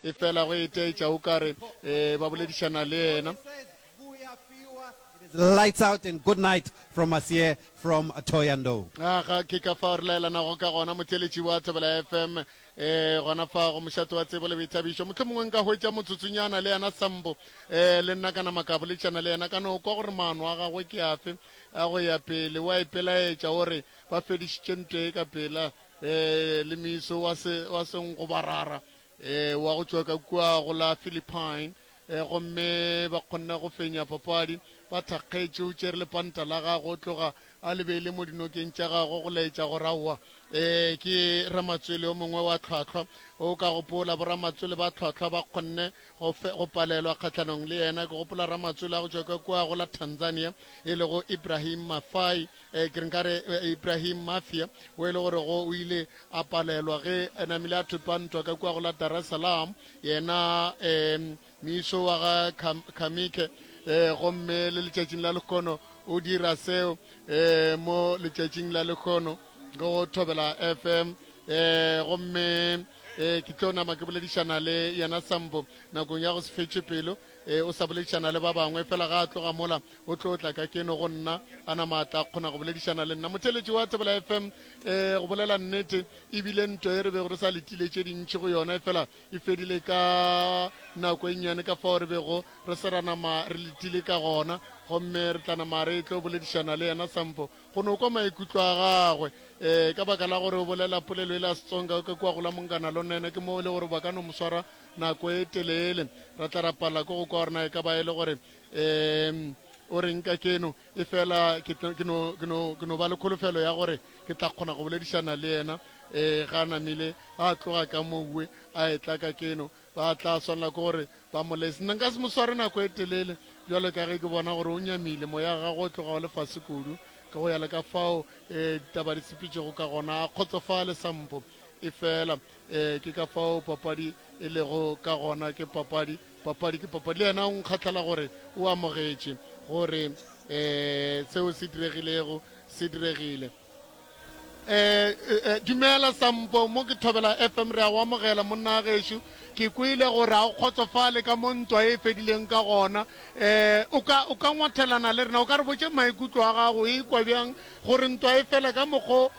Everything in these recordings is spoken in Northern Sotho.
e fela go itaetša o ka re e, ba boledišana le yena. Lights out and good night from us here from Thohoyandou. A ga ke ka fao re laelanago ka gona motšeletši wa Thobela FM um eh, gona fa go mošate wa tsebo le boithabišo motlho mongwe nka hwetša motsotsonyana le yena sambo um le nna ka nama ka boletšana le yena ka no kwa gore maano a gagwe ke afe a go ya pele wa ipelaetša o re ba fedišitše ntwe ka pela Ee, le Miso wa se, wa Sengobarara, ee, wa go tšwa ka kua go la Philippine, ee, gomme ba kgonne go fenya papadi, ba thakgetše, o tšere lepanta la gago, o tloga a le beile mo dinokeng tša gago, go laetša gore, Aowa, ee, ke Ramatswele yo mongwe wa tlhwahlwa. O ka gopola, boramatswele ba tlhwahlwa ba kgonne go, fe, go palelwa kgahlanong le yena. Ke gopola ramatswele a go tšwa ka kua go la Tanzania, e lego Ibrahim Mathai, Eh, ke re nkare eh, Ibrahim Mafia o e le gore go o ile a palelwa ge a namile a thopiwa ntwa ka kua go la Dar es Salaam yena um miso wa ga Kham- Khamike eh, gomme le letšatšing la lekgono o dira seo eh, mo letšatšing la lekgono go thobela fm eh, gomme eh, ke tlo nama ke boledišana le yena sambo nakong ya go se fetše pelo Ee, o sa boledišana le ba bangwe, fela ga a tloga mola, o tlo tla ka keno go nna, a nama a tla kgona go boledišana le nna. Motheeletši wa Thobela FM, ee, go bolela nnete, e bile nto ye re bego re sa letile tše dintši go yona, efela e fedile ka nako e nnyane ka fao re bego re se ra nama re letile ka gona, gomme re tla nama re tlo boledišana le yena Sampo, go no kwa maikutlo a gagwe. Ee, ka baka la gore o bolela polelo e la Setsonga, o ka kua go la Monganalonene, ke moo e le gore ba ka no mo swara nako e telele ra tla ra palela ko go kwa gore na e ka ba e le gore um o reng ka keno e fela ke tlo- ke no- ke no- ke no ba le kholofelo ya gore ke tla kgona go boledišana le yena um ga a namile a tloga ka moue a etla ka keno ba tla swanela ke gore ba mo lese nna nka se mo sware nako e telele bjalo ka ge ke bona gore o nyamile moya wa gagwe o tloga o le fase kudu ka go ya le ka fao um ditaba di sepetšego ka gona a kgotsofale sampo e fela Ee, ke ka fao papadi e lego ka gona. Ke papadi, papadi ke papadi. Le yena o nkgahlala gore o amogetše gore um seo se diregilego se diregile. Um dumela Sampo, mo ke Thobela FM, re a go amogela monna gešo. Ke kwele gore a o kgotsofale ka mo ntwa e fedileng ka gona. Um o ka o ka ngwathelana le rena, o ka re botše maikutlo a gago e kwa bjang gore ntwa e fele ka mokgo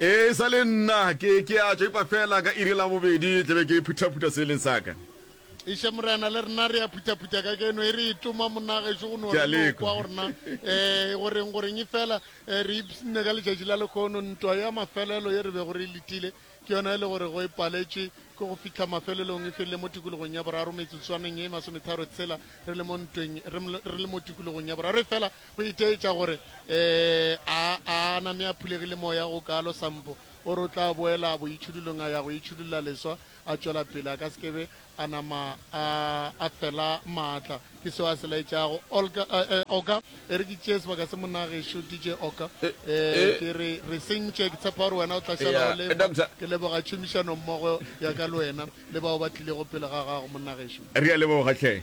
E sa le nna, ke, ke a tšwa, epa feela ka iri ya labobedi tla be ke phuthaphutha seeleng sa ka. Eša, Morena, le rena re a phuthaphutha kajeno, e re e toma, monna gešo, go no Ke a re no lekwa. kwa go rena. E, goreng, goreng e fela, e, re ipsnne ka letšatši la lekhono, ntwa ya mafelelo ye re bego re e letile, ke yona e le gore go e paletšwe ke go fihla mafelelong, e felele mo tikologong ya boraro, metsotswaneng ye e masometharo tshela, re le mo ntweng, re, ml, re le mo tikologong ya boraro. Efela, Go itaetša gore, Ee, a, a na me a phulegile Moya go kalo, Sampo. O re o tla boela boitšhudulong a ya go itšhudulla leswa, a tšwela pele, a ka se ke be a nama a, a fela maatla. Ke seo a se laetšago. Olga, eh, eh, Oka, e re ke tšee sebaka se, monna gešo DJ Oka. Eh, ke re, re sentše. Ke tshepa gore wena o tla šala o le fa. Ke leboga tšhomišanommogo ya ka le wena, le bao ba tlilego pele ga gago, monna gešo. Re a leboga, hle.